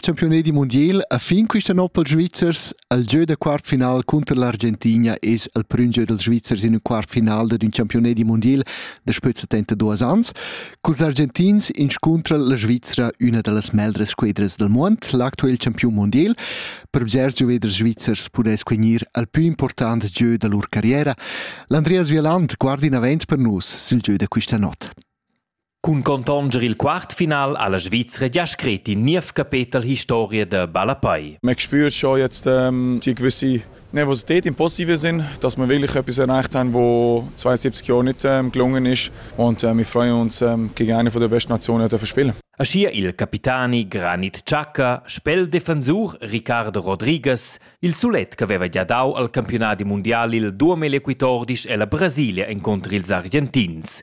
Campiunedi mundial a fin quista no pels Svizzers, al gieu da quartfinal cunter l'Argentina es al prüm gieu dels Svizzers in ün quartfinal dad ün campiunedi mundial da spüzza tenta duos ans. Culs Argentins inscuntra la Svizzra üna da las meglras squedras del muond, l'actuel campiun mundial. Per bgers gioveders svizzers pudess gnir al pü important gieu da lur carriera. L'Andreas Vieland guarda in avant per nus sül gieu da quista not. Cun contonger il quartfinal ha la Svizra gia scrit in niev capetel historia da ballapei. Man spürt schon jetzt ähm, die gewisse Nervosität im positiven Sinn, dass wir wirklich etwas erreicht haben, wo 72 Jahre nicht ähm, gelungen ist. Und äh, wir freuen uns, ähm, gegen eine der besten Nationen zu spielen. Aschia il capitani Granit Chaka, spel defensur Ricardo Rodriguez, il sulet che aveva già dau al campionati mondiali il 2014 e la Brasilia incontro ils Argentins.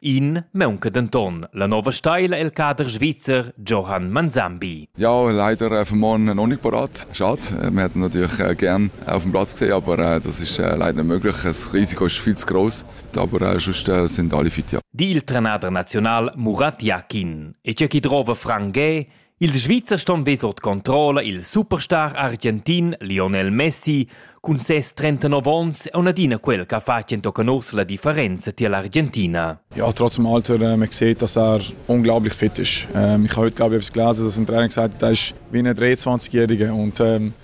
In maunca denton la nova steila el cader svizzer Johann Manzambi. Ja, leider auf dem Morgen noch nicht parat. Schade. Wir hätten natürlich äh, gern auf dem Platz gesehen, aber äh, das ist äh, leider nicht möglich. Das Risiko ist viel zu groß, aber sonst sind alle fit, ja. Die il tranader nazional Murat Yakin e c'è chi trova Frank Gay Ils Svizzer ston vess ord controlla il superstar argentin Lionel Messi cun ses 39 onns e adina quel che ha fatg entochen uss la differenza tier l'Argentina. Ja, trotz dem Alter, äh, man sieht, dass er unglaublich fit ist. Ähm, ich habe heute, glaube ich, etwas gelesen, dass ein Trainer gesagt hat, er ist wie ein 23-Jähriger und ähm,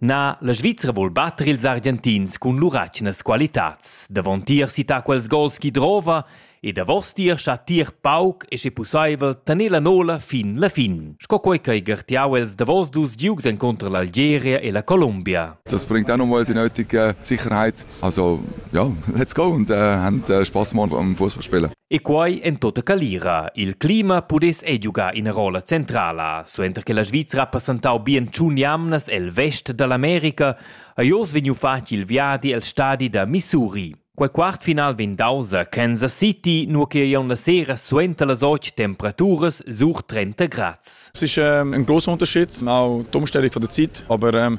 Na, la Svizra vul batter ils Argentins cun lur atgnas qualitads. Davontier sità quels gols chi drova e davostier chattier pauc e sche pussaivel tener la nola fin la fin, sco quei ch'ei gartiau els davos dus giugs encunter l'Algeria e la Colombia. Das bringt auch nochmal die nötige Sicherheit. Also ja, let's go und äh, haben äh, Spaß gemacht am Fußballspielen. E quai en tota calira. Il clima pudess ei giugar ina rolla centrala. Suenter che la Svizra ha passentau bien tschun jamnas el vest dall'America, ha Jos vegniu fatg il viadi el stadi da Missouri. Quei quart final vegn daus a Kansas City, nur che ei la sera suenter las ocht temperaturas sur 30 Grad. Es ist ähm, ein großer Unterschied, auch die Umstellung von der Zeit, aber ähm,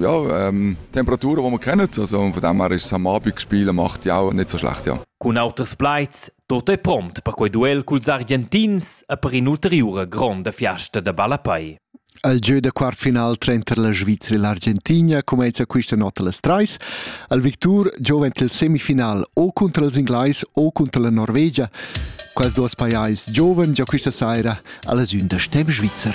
Ja, ähm, Temperatur, die wir kennen, also von dem her ist es am Abend gespielt, macht ja auch nicht so schlecht, ja. Con auters plaids, tutto è pront per quei duel culs Argentins e per in'ulteriura gronda fiasta da ballapei. Al gieu da quartfinal tranter la Svizzera e l'Argentina cumenza questa notte las trais. Al Victur giovent il semifinal o contro els inglais o contro la Norvegia. Quasi duas pajais giovani già questa sera alla sün da Stemm Svizzer.